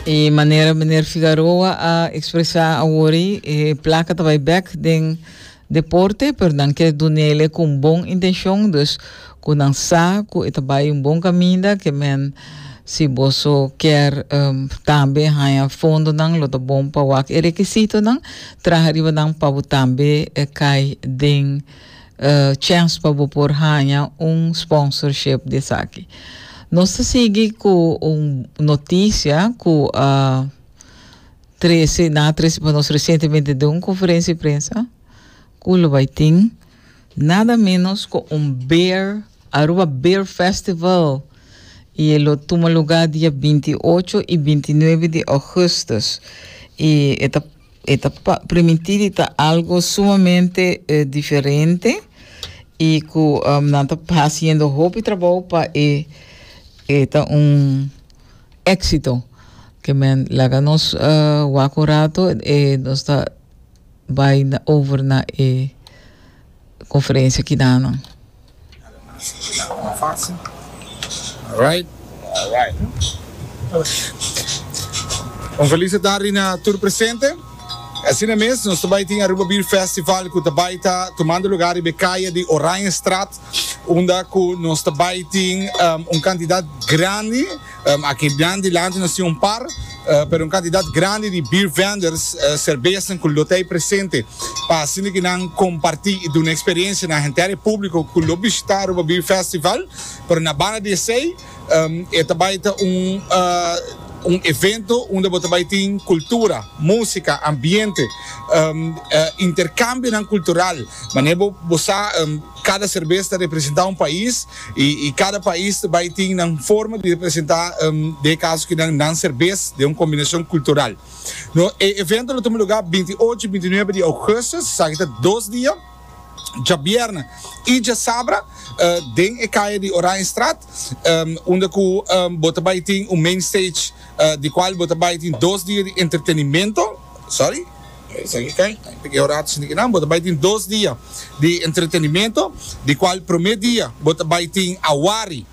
E manera meneer Figaroa a expresa awori, e placa ta bai back den deporte, pero nan kier dunele con bon intencion, dus cu nan sa cu e ta bai un bon caminda, que men si boso kier um, tambe haya fondonan, lo ta bon pa wak e requisitonan, traha riba nan pa bo tambe eh, cay den. chèns pa bo por haña un sponsorship di esaki. Nos ta sigui ku un notisia ku a trese, nan a trese pa nos resientemente den un konferensia di prensa, ku lo bai tin nada ménos ku un beer, Aruba Beer Festival, i e lo tuma lugá dia binti ocho i binti nuebe di ougùstùs. I e ta E ta primintí di ta algo sumamente diferente i ku nan ta hasiendo hopi trabou pa e e ta un éksito. Ke men laga nos wak un rato e nos ta bai over na e. conferencia ki da nan. Un felice tardi na tur presente. Asina mes nos ta bai tin Aruba Beer Festival cu ta bai ta tumando lugar riba e caya di Oranjestraat unda cu nos ta bai tin un cantidad grandi. Aki blan dilanti nos tin un par, pero un kantidat grandi di biervenders, serbesnan ku lo ta ei presente pa hasinda ku nan kompartí i duna eksperensia na henter e públiko ku lo bishitá Aruba Beer Festival. Pero na banda di esei e ta bai ta un evento unda bo ta bai tin kultura, músika, ambiente, interkambionan kultural, manera bo sa. Cada serbes ta representa un pais y y cada pais ta bay tin nan forma di representa de caso ki nan nan serbes den un combinacion cultural. No e evento lo tuma lugar binti y ocho y binti y nuebe di augustus, esaki ta dos dia, djabierne y djasabra, den e caya di Oranjestraat unda cu bo ta bay tin un main stage di cual bo ta bay tin dos dia di entretenimento, sorry. Esaki ta e pequeo rato shina kinan. Bo ta bai tin dos dia di entretenimento, di cual prome dia bo ta bai tin Awari,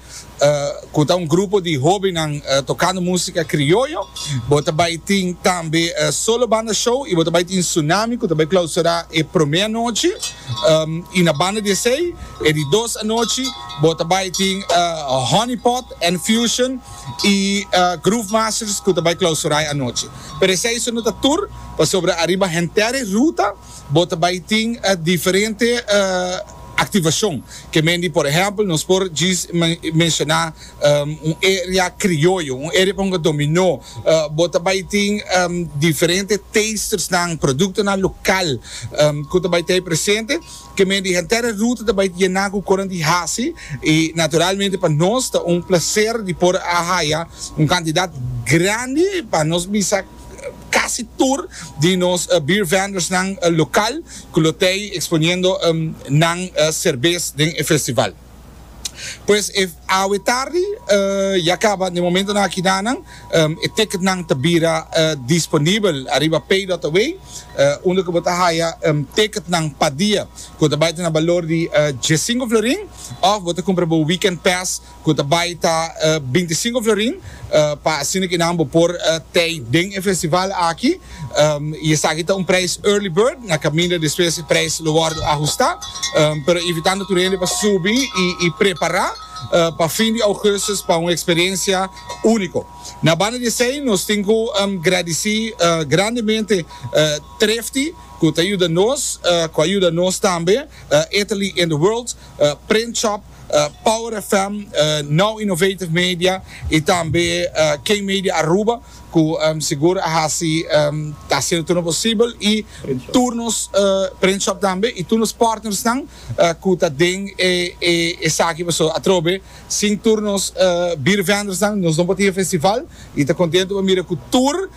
cu ta un grupo di hobennan tocando musica crioyo. Bo ta bai tin tambe Solo Banda Show y bo ta bai tin Tsunami cu ta bai clausura e prome anochi. Y na banda di esey, e di dos anochi, bo ta bai tin Honeypot and Fusion. y Groove Masters cu ta bay clausurai anochi. Pero esey su no ta tur, pasobra ariba Henterre Ruta bo ta bay tin diferente activacion que mendi por ehempel nos por djis menciona un area crioyo, un area pa hunga dominó, bo ta bay tin diferente tastersnan, productonan local cu ta bay ta hay presente. Kem'é di henter Ruth ta bai yená ku koran di hasi, i naturalmente pa nos ta un plaser di por a haya un kantidat grandi, pa nos bisa kasi tur di nos beer vendors-nan lokal ku lo tei eksponiendo nan serbes den e festival. Pues e awe tardi ya caba na e momentonan akidanan e ticketnan ta bira disponibel ariba pay.away unda cu bo ta haya ticketnan pa dia cu ta bay ta na balor di diesinco florin of bo ta cumpra bo weekend pass cu ta bay ta binticinco florin pa asina cu nan bo por tey den e festival aki. Y esaki ta un prijs early bird, na caminda despues e prijs lo wordo ahusta. Pero invitando tur hende pa subi y prepara pa fin di augustus pa un experiencia unico. Na banda di esey nos tin cu gradici grandemente Thrifty cu ta yuda nos, cu a yuda nos tambe, Italy in the World, Print Shop, Power FM, Now Innovative Media y tambe K-Media Aruba cu sigur a haci, ta haciendo tur nos posibel y tur nos print shop tambe y tur nos partnersnan cu ta den esaki pasobra atrobe sin tur nos beer vendors-nan nos no por tin e festival y ta contento pa mira cu tur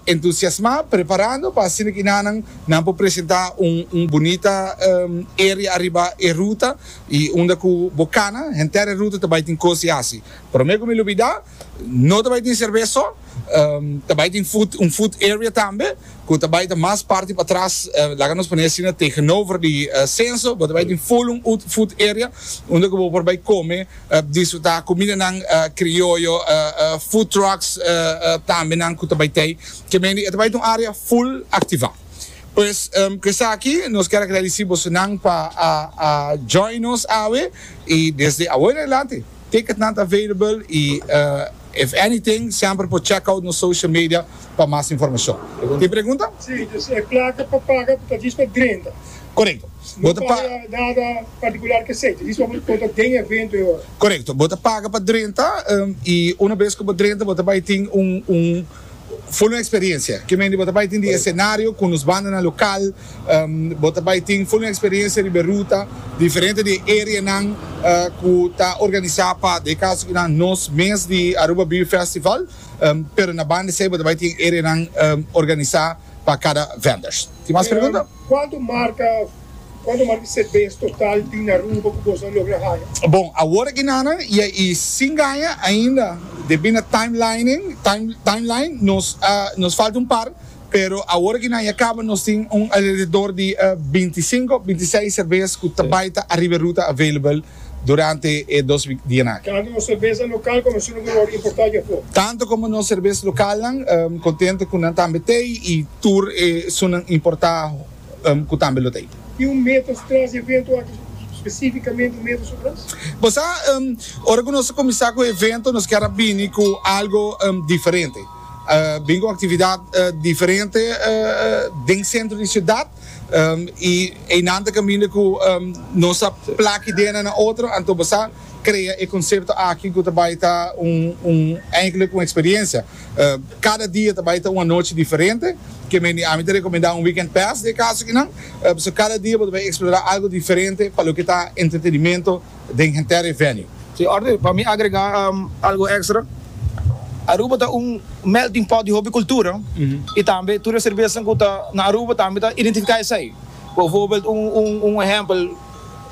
entusiasma preparando pa asina cu enanan nan por presenta un bunita area ariba e ruta y unda cu bo cana henter e ruta ta bay tin cos di haci. Prome cu mi lo bida. No ta bai tin serves so, ta bai tin food, un food area tambe cu ta bai ta mas parti patras, laga nos pone asina, tegenover di Censo, bo ta bai tin full un food area unda cu bo por bai come, disfruta cumindanan crioyo, food trucks tambe nan cu ta bai tei, ke mendi e ta bai ta un area full activa. Pues cu esaki nos quier agradeci bosonan pa a join nos awe y desde awo en adelante. Ticketnan ta available y if anything semper por check out nos social media pa mas informacion. Tin pregunta? Sí, dus e placa pa paga ta djis pa drenta. Corecto. Bo ta paga. No bay a dada particular kesey, ta djis pa bo conta den e evento e ora. Corecto. Bo ta paga pa drenta y una bes cu bo drenta bo ta bay tin un Fo no experiencia. Kimen di bo ta bai tin di escenario cu nos bandanan local, bo ta bai tin fo no experiencia riba e ruta, diferente di e areanan cu ta organisa pa den caso cu nan nos mes di Aruba Beer Festival, pero na banda esey bo ta bai tin areanan organisa pa cada vendors. Tin mas pregunta? Cuanto marca Cuanto mas di se bes total di Naruba cu bos a logra haya? Bon, awor aki nana ya i sin gaña ainda. Debí na timelining, time, timeline, nos a, nos falta un par, pero awor aki nan ya caba nos tin un alrededor di binti sinco, binti seis serbes cu ta bay ta ariba e ruta available durante e dos dianan aki. Tanto nos serbesa local como su numero a importa aki afo. Tanto como nos serbes localnan, contento cu nan tambe t'ey y tur e sunan importa ku tambe lo ta ei. Tin un meta su tras e evento aki, spesifikamente un meta su tras? Bo sa, ora ku nos ta kuminsá ku e evento nos kier a bini ku algu diferente. Bini ku un aktividat diferente den sentro di siudat i einan ta kaminda ku nos a plaki dena na otro, anto bo sa krea e konsepto aki ku ta bai ta un, un, eindelijk un eksperensia. Cada dia ta bai ta un anochi diferente. Ke mende ami ta recomenda un weekend pass den e cas akinan. So cada dia bo ta bai explora algo diferente pa loke ta entretenimento den Gentherey Venue. Si orde, pa mi agrega algo extra. Aruba ta un melting pot di hopi cultura y tambe tur e cervesanan cu ta na Aruba tambe ta identifica esey. Bijvoorbeeld un ehempel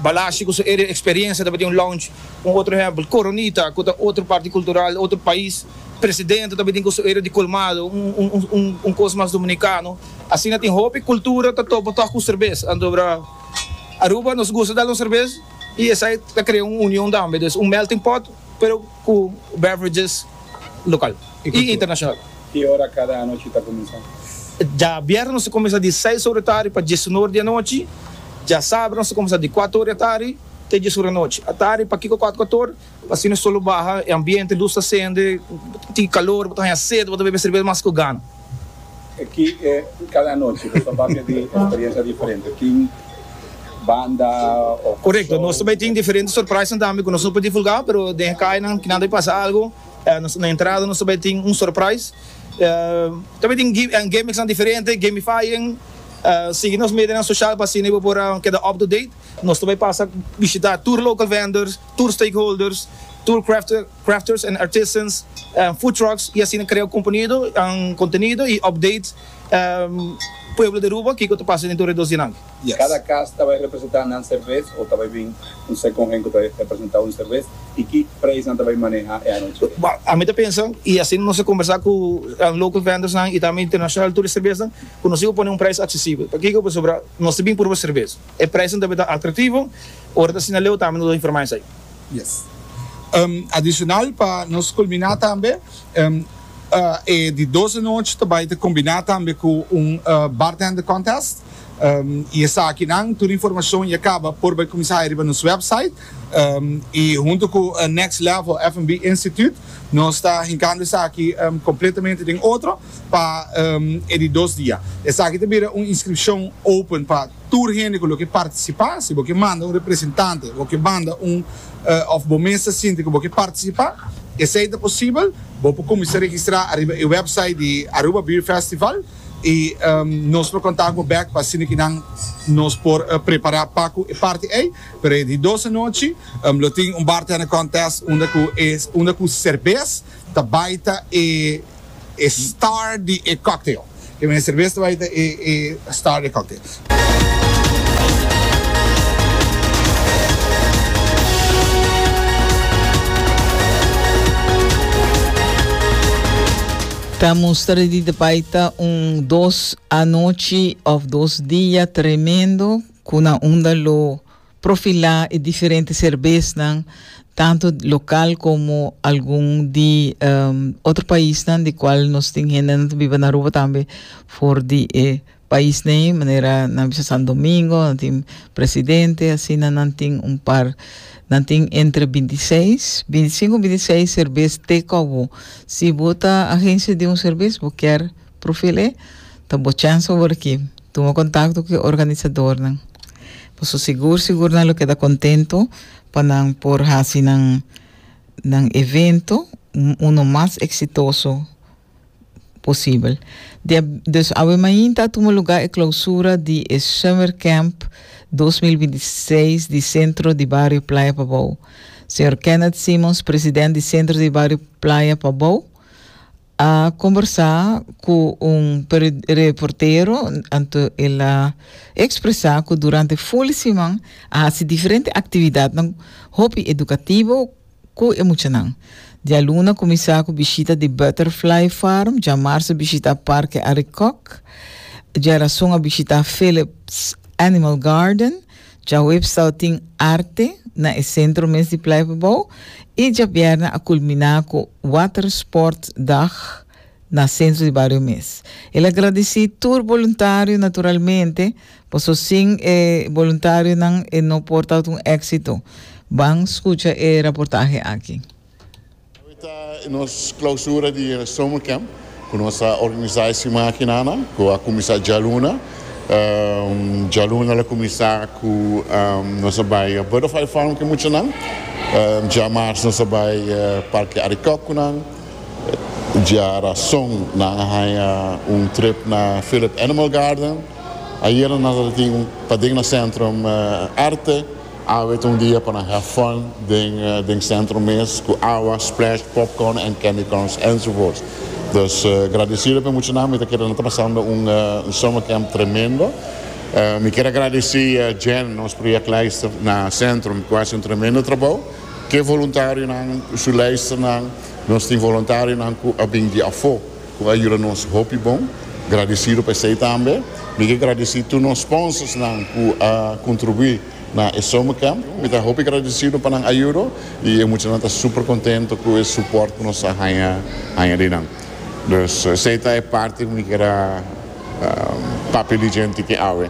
Balashi cu su area experiencia tabatin un lounge. Un otro ehempel Coronita cu ta otro parti cultural, otro pais. Presidente ta bini cu su area di colmado, un cos mas dominicano. Asina tin hopi cultura ta topa toch cu cervez. Antobra Aruba nos gusta dal un cervez y esai ta crea un union tambe. Pues un melting pot pero cu beverages local y internacional. Ki ora cada anochi ta cuminsa? Djabièrnè nos ta cuminsa di seis ora tardi pa djes un ora di anochi. Djasabra nos ta cuminsa di cuatro ora di atardi te djes ora di anochi. Atardi pa kico cuatro, cuatro ora? Asina so lo baha e ambiente, lus ta sende, bo tin calor, bo ta haña sed, bo ta bebe cerveza mas cu gana. Aki e cada anochi bo ta papia di experiencia diferente, tin banda o show. Corecto, nos tambe tin diferente surprisenan tambe cu nos no por divulga, pero den e cainan ki nan ta bay pasa algo, na entrada nos ta bay tin un surprise, ta bay tin gimmicksnan diferente, gamifying, sigui nos medianan social pa asina bo por keda up to date, nos ta bay pasa bishita tur local vendors. tur stakeholders, tur crafters and artisans, food trucks y asina crea contenido y update pueblo di Aruba kico ta pasa den tur alredor di nan. Cada cas ta bay representa nan serves o ta bay bin un second hen cu ta representa un serves y ki prijs nan ta bay maneha e anochi? Ami ta pensa y asina nos a conversa cu local vendors nan y tambe internacional tur e serves nan cu nos diba pone un prijs accesible. Pakico? Pasobra nos ta bin proba serves. E prijzen tambe ta atractivo. Ora ta asina Leo tambe nos a informa esai. Yes. Adicional pa nos culmina tambe e di dos di nochi ta bay ta combina tambe cu un bartender contest y esaki nan tur informacion ya caba por bay cuminsa hayo riba nos website y hunto cu Next Level F&B Institute nos ta hincando esaki completamente den otro. pa e di dos dia. Esaki ta bira un inskripshon open pa tur hende ku lo ke partisipá. Si bo ke manda un representante bo ke manda un òf bo mes ta sinti ku bo ke partisipá, esei ta posibel. Bo por kuminsá registrá ariba e wèpsait di Aruba Beer Festival i nos lo kontak bo bèk pa asina ke nan nos por prepará pa ku e parti ei. Pero e di dos anochi lo tin un bartender contest unda ku e unda ku serbes ta bai ta e. E star di e cocktail. Ke mester a bes ta bai ta e star di e cocktail. Ta muster di ta bai ta un dos anochi of dos dia tremendo ku na unda lo Profilá e diferente serbesnan, tantu lokal komo algun di otro paisnan, di kual nos tin hendenan ta biba na Aruba tambe for di e paisnan ei, manera nan bisa San Domingo, nan tin presidente, asina nan tin un par, nan tin entre binti seis, binti sinku, binti seis serbes te kòbo. Si bo ta agensia di un serbes, bo kier Profil E, Ta bo chèns pa bo riki tuma kontakto ku e organisadornan. Bo so sigur sigur nan lo keda kontentu pa nan por hasi nan nan evento uno mas eksitoso posibel. Dia dus awe mainta a tuma lugá e klousura di e Summer Camp dos mil binti i seis di Sentro di Bario Playa Pabou. Señor Kenneth Simmons, president di Sentro di Bario Playa Pabou, A combersa cu un reportero anto el a expresa cu durante fuli siman a haci diferente actividadnan hopi educativo cu e muchanan. Dialuna cuminsa cu bishita di Butterfly Farm, djamarsa bishita Parke Arikok, djarazon a bishita Phillips Animal Garden, Djahuip stau tin arte na e sentro mes di Pleipebouw i djabièrnè a kulminá ku Watersport Dag na sentro di bario mes. El a gradisí tur boluntario naturalmente paso sin e boluntarionan e no por tabatin un éksito. Ban skucha e raportahe aki. Awe ta nos clausura di e Summer Camp cu nos a organisa e siman akina nan cu a cuminsa djaluna. Djaluna lo cuminsa cu nos a bay Butterfly Farm cu e muchanan. Dja Marzo nos a bay Parke Arikok cu nan. Dja Razon nan a haya un trip na Philip Animal Garden. Ayera nos a tin paden na Centrum Arte. Awe ta un dia pa nan have fun den centro mes cu awa, splash, popcorn and candy corns enzovoorts. Dus gradecido p'e muchanan mi ta kere nan ta pasando un summer camp tremendo. Mi ker a gradeci Jen, nos projectleister na centrum cu a haci un tremendo trabou ke voluntarionan cu su leisternan. Nos tin voluntarionan cu a bin di afo. Cu a yuda nos hopi bon. Gradecido pa esey tambe. Mi ke gradeci tur nos sponsorsnan cu a contribui na e summer camp. Mi ta hopi gradecido pa nan ayudo y e muchanan ta super contento cu e support cu nos a haya di nan. Dus esey ta e parti cu mi keda papia di djenti ke awe.